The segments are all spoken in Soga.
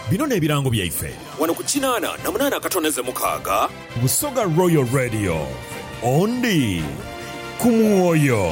Bino n'ebirango byaife. Wano ku kinaana na munaana akatoneze mukaaga. Busoga Royal Radio, Ondi ku mwoyo.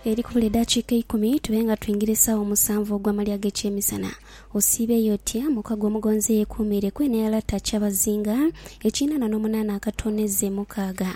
Eri kubula edaakiika eikumi tube nga twingire esaawa omusanvu ogw'amalya ag'ekyemisana, osiibeeyo otya? Mukago omugonzi eyeekuumiire ku eno ey'alata Kyabazinga, ekinaana n'omunaana akatoneze mukaaga.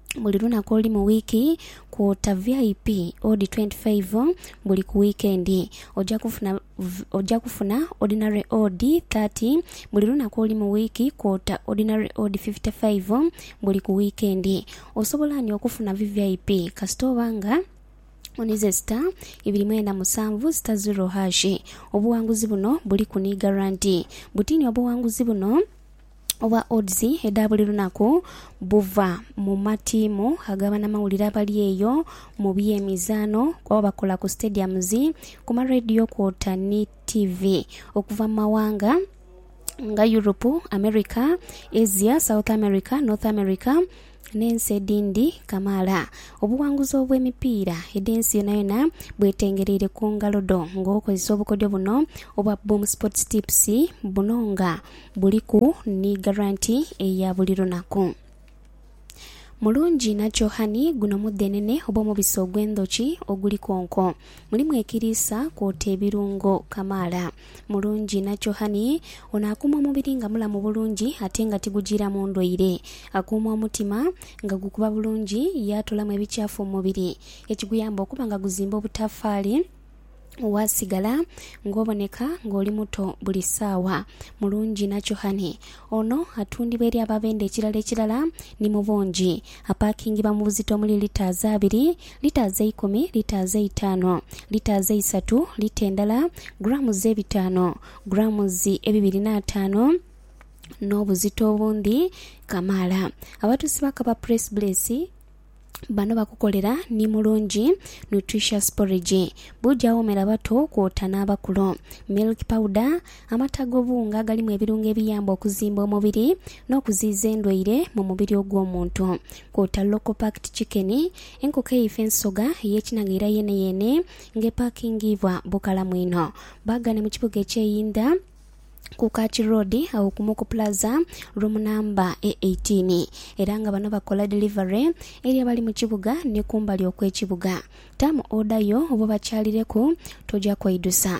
buli lunaku olu mu wiiki kwota VIP odi twenty faive buli ku wiikendi. Oja kufuna oja kufuna odinale odi thirty buli lunaku olu mu wiiki kwota odinale odi fifite faive buli ku wiikendi. Osobola ani okufuna VVIP kasita oba nga onize sita ibiri mwenda musanvu sita ziro hashi. Obughanguzi buno buliku ni garanti. Butini obughanguzi buno. obwa Odds edha buli lunaku buva mu matiimu aga banamawulire abali eyo mu by'emizaano kuba bakola ku stadiums, ku ma radio kwota ni tivi okuva mu mawanga nga Europe, America, Asia, South America, North America, n'ensi edhindi kamaala. Obuwanguzi obw'emipiira edh'ensi yonayona bwetengereire ku ngalo dho nga okozesa obukodyo buno obwa Boom Sports Tips buno nga buliku ni garanti eya buli lunaku. Mulungi inha kyo honey, guno mudhenene oba omubisi ogw'endhoki oguliku onko. Mulimu ekiriisa kwota ebirungo kamaala. mulungi nakyohani ono akuuma omubiri nga mulamu bulungi ate nga tigujiiramu ndwaire. Akuuma omutima nga gukuba bulungi ye atoolamu ebikyafu mu mubiri ekiguyamba okuba nga guzimba obutafaali waasigala ng'oboneka ng'oli muto buli saawa. Mulungi nakyohani ono atundibwa eri ababenda ekirala ekirala ni mu bungi. Apaakingibwa mu buzito omuli litres abiri Litres eikumi, litres eitaanu, litres eisatu, lita endala, grams ebitaanu, grams ebibiri n'ataanu, n'obuzito obundhi kamaala. Abatuusi ba Kapa Press Bless bano bakukolera ni Mulungi Nutritious Porridge, buugi awoomera abato kwota n'abakulu, milk powder, amata ag'obuwunga agalimu ebirungo ebiyamba okuzimba omubiri n'okuziyiza endwaire mu mubiri ogw'omuntu, kwota local packed chicken, Enkoko eife ensoga ey'ekinaghaira yeeneyeene nga epaakingiibwa bukalamu inho. Baagane mu kibuga eky'einda ku Kachi Road agho ku Muku Plaza, room number e eighteen, era nga bano bakola delivery eri abali mu kibuga ni kumbali okw'ekibuga. Taamu order yo oba obakyalireku, toja kweidusa.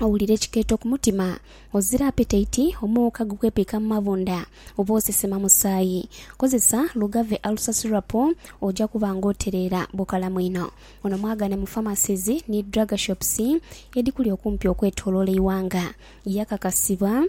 Owulira ekikeeto ku mutima, ozira apetaiti, omuuka gukwepiika mu mabunda, oba osesema musaayi. Kozesa Lugave Ulcer Syrup oja kuba nga otereera bukalamu inho. Ono mwagane mu pharmacies ni drug shops edhikuli okumpi okwetoloola eighanga. Yakakasibwa.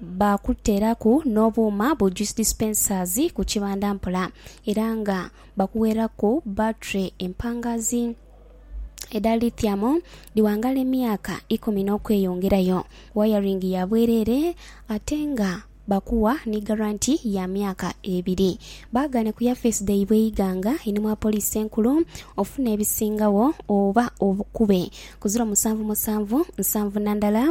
Baakuteeraku n'obuuma bu juice dispensers ku kibanda mpola era nga bakuweeraku battery empangaazi edha lithium dhi wangaala emyaka ikumi n'okweyongerayo, wayaringi ya bwereere ate nga bakuwa ni garanti ya myaka ebiri. Baagaane ku yafeesi dhaibwe eighanga ini mwa Poliisi Enkulu ofune ebisingagho oba obukube ku ziro musanvu musanvu nsanvu na ndala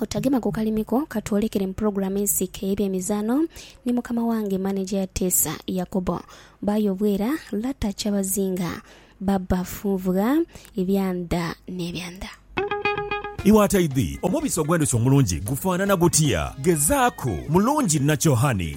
Otagema ku kalimi ko ka twolekere mu pulogulaamu ensiike ey'ebyemizaano ni mukama wange maneja ya Teesa Yakobo. Baayo obwera, lata kyabazinga, baba funvugha ebya ndha n'ebya ndha. Iwe ataidhi, omubisi ogw'endhuki omulungi gufaanana gutya? Gezaaku mulungi nakyo, honey.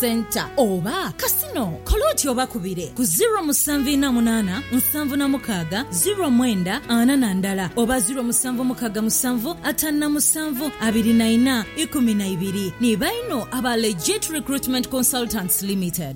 Centre oba Casino, kola oti obakubire ku ziro musanvu ina munana nsanvu na mukaga ziro mwenda ana na ndala oba ziro musanvu mukaga musanvu atanu na musanvu abiri na ina ikumi na ibiri ni baino aba Legit Recruitment Consultants Limited.